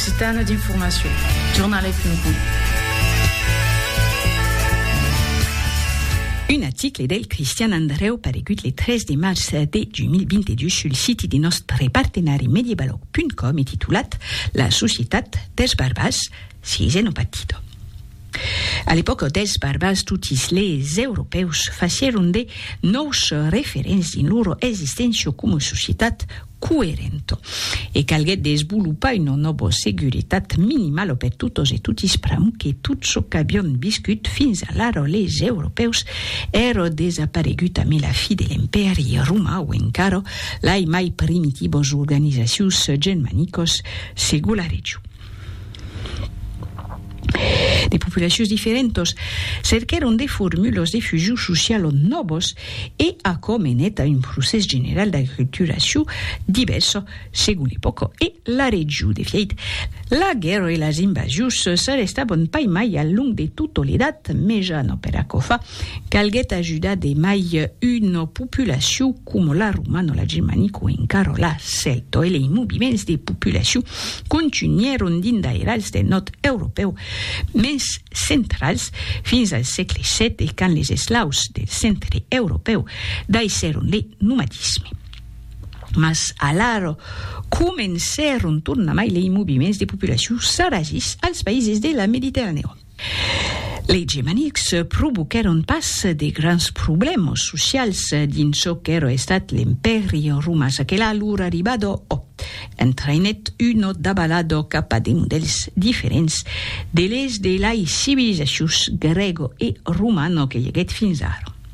Sitana d'informacion, jornalais.com. Un article del Cristian Andrèu paregut le 3 de març de 2022 sul siti de nòstre partenari Mediebalog.com e titulat La societat dels barbars si es en un partido. A l'epòca dels barbars totis les europèus facièron de nòus referents dins lor existéncia coma societat, coerent e calguèt desvolopar una nòva seguretat minimala per totos e totis pr'amor que tot çò qu'avián viscut fins alara leis europèus èra desaparegut amé la fi de l'Empèri romà o encara lai mai primitivas organizacions genmanicas segon la region. de populacions diferentas, cerquèron de formulas de fusion sociala nòvas e aquò menèt a un procès general d'aculturacion divèrsa segon l'epòca e la region. De fièit, la guèrra e las invasions s'arrestavan pas mai al long de tota l'Edat Mejana. Per aquò fa, calguèt ajudar de mai una populacion coma la romano, la germanico e encara la celto, e lei moviments de populacion contunhèron dins d'airals del nòrd europèu mens centrals fins al sègle xii e quand les eslaus del centre europèu daissèron le nomadisme. Mas alara comencèron tornamai lei moviments de populacion sarazis als païses de la Mediterranèon. Lei Gemanics provoquèron pas de grans problèmas socials dins çò qu'èra estat l'Empèri Romàs aquela lor arribada o entraïnèt una dabalada cap a de modèls diferents de les de lai civilizacions grèga e romana que i aguèt fins ara.